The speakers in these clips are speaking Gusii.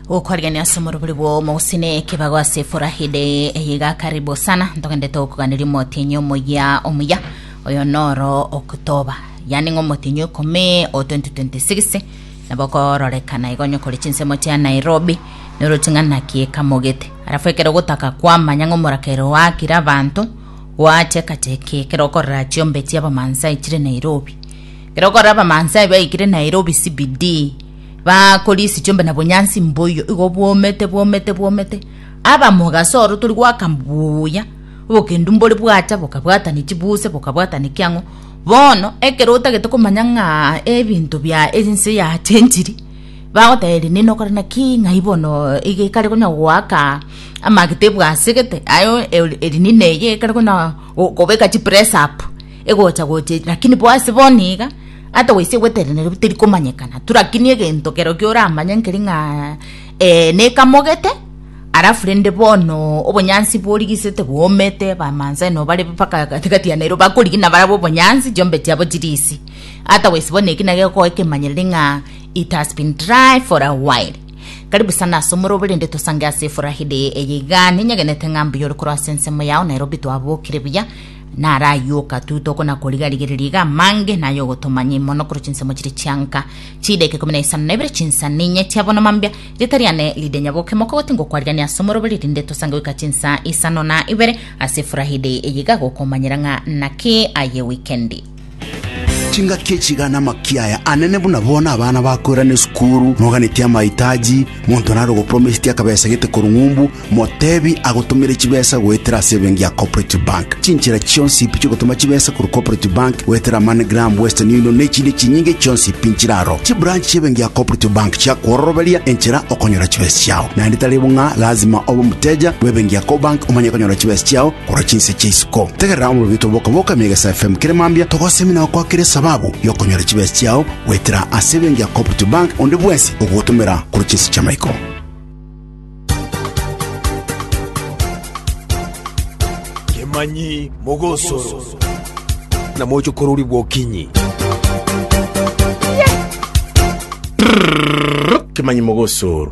gokwarigania ase omorobori bwao mogosine ekebago ase eforahide eyiga karibu sana ntogende togokoganeria omotienyi omoya omuya oyo noro oktoba yani ng'a omotienyi ekome o 2026 nabo okororekana igo onye okore chinsemo chia nairobi noroti ng'a naki ekamogete arafu ekero ogotaka kwamanya ng'a omorakero oakire abanto gwachekacheki ekero okorora chiombe chia abamansai chire nairobi Ere okore Abamansai baikire Nairobi CBD bakorisia chiombe na bonyansi mboiyo igo bwomete bwomete bwomete aba mogasoro tori gwaka mbuya obokendu mbore bwacha bokabwatani chibuse bokabwatani kiang'o bono ekero otagete komanya ng'a ebinto bia ense yachenchiri bagoteberia nini okore naki ng'ai bono iga ekare konya goaka amagete ebwasegete aye eri nini eye ekare konya gokobeka chipress up Egocha-gocha, lakini bo ase bono iga, ata goisa egweterenerwa pi terikomanyekana tu, lakini egento kerokio oramanye nkeri ng'a eh nekamogete, alafu rende bono obonyansi borigisete bwomete, Abamaasai nabo bare mpaka gati-gati ya Nairobi bakorigia na barabwo obonyansi, chiombe chiabo chire ise. Ata goisa bono eki naki gekoa ekemanyereri ng'a it has been dry for a while. Karibu sana ase omorobe rende tosange ase efuraha eye iga, ninyegenete ng'a mbuya ore korwa ase ensemo yao, Nairobi twabokire buya. Narayioka tu tokona koriga-rigereria iga amange naye ogotomanyia mono korwa chinsemo chiria chianka chideka ikomi na isano na ibere chinsa ninye chia bono mambia rieta riane ride nyaboke moka goti ngokwarigania ase omoroberi rinde tosange goika chinsa isano na ibere ase Friday eye iga gokomanyera ng'a naki aye weekend. Chingaki echi iga namakia aya anene buna bono abana bakoirana esukuru, moganetie amahitaji, monto nare ogopromiseti akabesa gete korwa ng'umbu, motebi agotomere chibesa goetera ase ebenki ya Cooperative Bank. Chinchera chionsi ipi chiogotoma chibesa korwa Cooperative Bank goetera MoneyGram, Western Union na echinde chinyinge chionsi pi nchiraro. Chibranch chi'ebenki ya Cooperative Bank chiakworoberia enchera okonyora chibesa chiao. Naende tari bo ng'a lazima obe omoteja bw'ebenki ya Cobank omanye konyora chibesa chiao, Korwa chinse chia isiko, tegerera omobibito bokaboka Megesa FM kere mambia togosemi na gokwakera esababu y'okonyora chibesa chiao goetera ase ebenki ya Cooperative Bank onde bwensi ogogotomera korwa chinse chi'amaiko. Kemanyi mogosoro na mochokorori bwokinyi. Kemanyi mogosoro.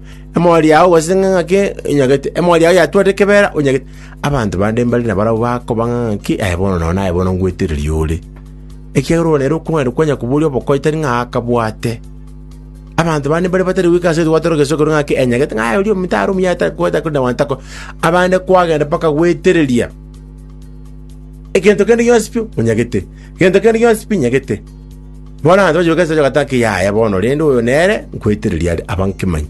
Emori yao gose ng'a ng'aki onyagete, emori yao yatwarire ekebeera onyagete. Abanto bande mbare nabarabwo bakoba ng'a ng'aki, aye bono nao naye bono ngwetereria ore. Ekiagera ore nere okong'aini kwanya koboria obokoe tari ng'a akabwate. Abanto bande mbare batari goika ase ogochia gwatoroka esegi korwa ng'a ng'aki enyagete, ng'a aye oria ominto are omuya ta- ko- takore na gwantakwa. Abande kwagenda mpaka gwetereria egento kende gionsi pi onyagete, egento kende gionsi pi nyagete. Bono abanto bachia gokesaneka bagatiga ati, Yaya bono, rende oyo nere nkwetereria are, aba nkemanyi.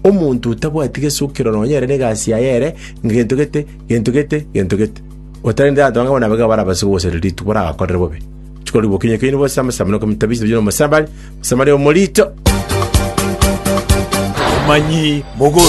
Omonto otabwati gesukiro nonya ere negasi yaye ere ngento gete, gento gete, gento gete, otareti abanto bange bono abaiga barabase kogosera rituko baragakorere bobe. Chikori bokinyi okeini bose amasabo na okomitabisa ebichenu omosamari, omosamari omorito. Abamanyi mogoso.